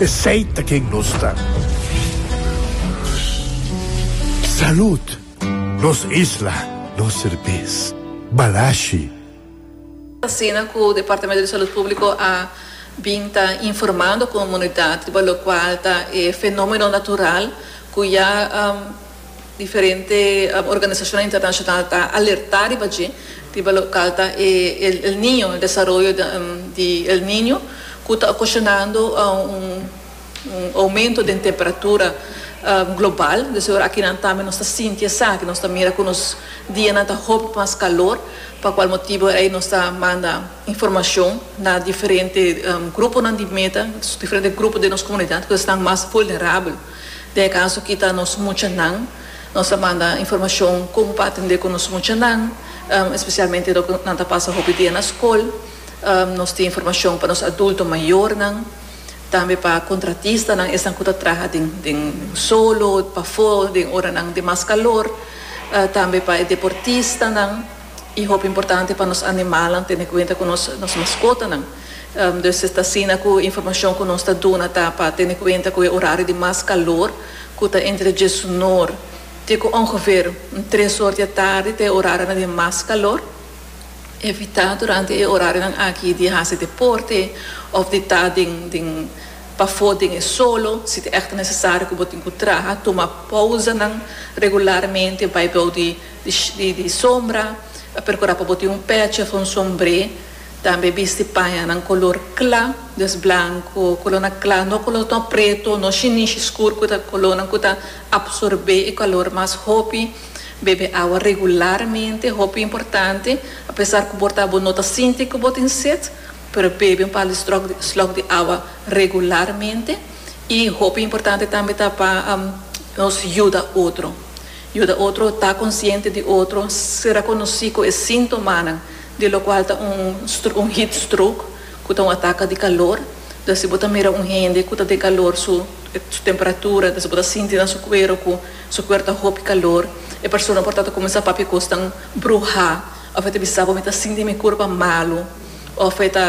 Esey ta ken nos ta. Salud! Nos isla, nos serbes. Balashi. Asina cu Departamento di Salud Publico a bin ta informando comunidad riba locual ta e fenomeno natural cu ya. Diferente organisashonnan internashonal ta alertá riba dje, riba lokal ta e El Niño, el desaroyo di El Niño, ku ta okoshonando un oumento den temperatura global. Dese ora akinan tambe nos ta sinti esaki, nos ta mira ku nos dianan ta hopi mas kalor, pa kual motibu ei nos ta manda informashon na diferente gruponan di meta, diferente grupo den nos komunidat ku esnan mas vulnerabel. Den e kaso kita nos muchanan, nos ta manda informashon kon pa atendé ku nos muchanan, espesialmente lo ku nan ta pasa hopi dia na skol. Nos tin informashon pa nos adulto mayornan, tambe pa kontratistanan, esnan ku ta traha den den solo, pafó, den ora nan di mas kalor, tambe pa e deportistanan. I hopi importante pa nos animalnan tene kuenta ku nos nos maskotanan. Dus e ta asina ku e informashon ku nos ta duna ta pa tene kuenta ku e orario di mas kalor ku ta entre diesunor te ku ongever un tres or di e tardi ta e orarionan di mas kalor. Evitá durante e orarionan aki di hasi deporte òf di ta den den pafó den e solo. Si ta èkto nesesario ku bo tin ku traha, tuma pousanan regularmente bai bou di. di sombra, a percura pa bo tin un pechi of un sombre, tambe bisti pañanan color cla, dus blanco, colornan cla, no colornan preto, no shinishi scur cu ta colornan cu ta absorbe e calor mas hopi, bebe awa regularmente, hopi importante, a pesar cu borta bo no ta sinti cu bo tin set, pero bebe un par di stroc di slok di awa regularmente, y hopi importante tambe ta pa nos yuda otro. Yuda otro ta konsiente di otro si rekonosí ku e síntomanan di lokual ta un un heat stroke, ku ta un ataka di kalor. Dor si bo ta mira un hende ku ta den kalor su su temperatura, dor si bo ta sinti na su kuero ku su kuer ta hopi kalor, e persona por ta ta kuminsá papia kosnan bruhá òf e ta bisa bo mi ta sinti mi kurpa malu òf e ta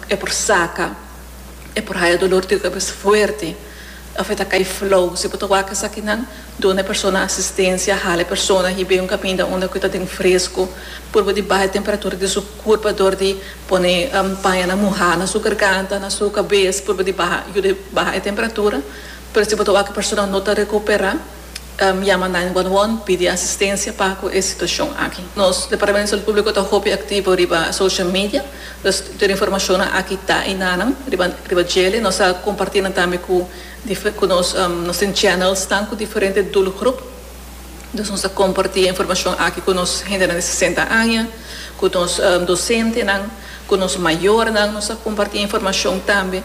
e por saka. E por haya dolor di kabes fuerte. Ofta ta kai flow. Si bo ta wak esakinan, duna e persona asistencia. Hala e persona hib'é un kaminda unda ku ta den fresku. Purba di baha e temperatura di su kurp dor di pone pañanan muhá na su garganta, na su kabes. Purba di baha, yuda baha e temperatura. Pero si bo ta wak e persona no ta rekuperá. yama nine one one pidi asistensia pa ku e situashon aki. Nos Departamento di Salud Públiko ta hopi aktivo riba social media, dus tur informashonnan aki ta i nanan riba riba djele. Nos a kompartí nan tambe ku dife ku nos nos tin channelsnan ku diferente doelgroep, dus nos a kompartí e informashon aki ku nos hendenan di sesenta aña, ku nos dosentenan, ku nos mayornan, nos a kompartí informashon tambe.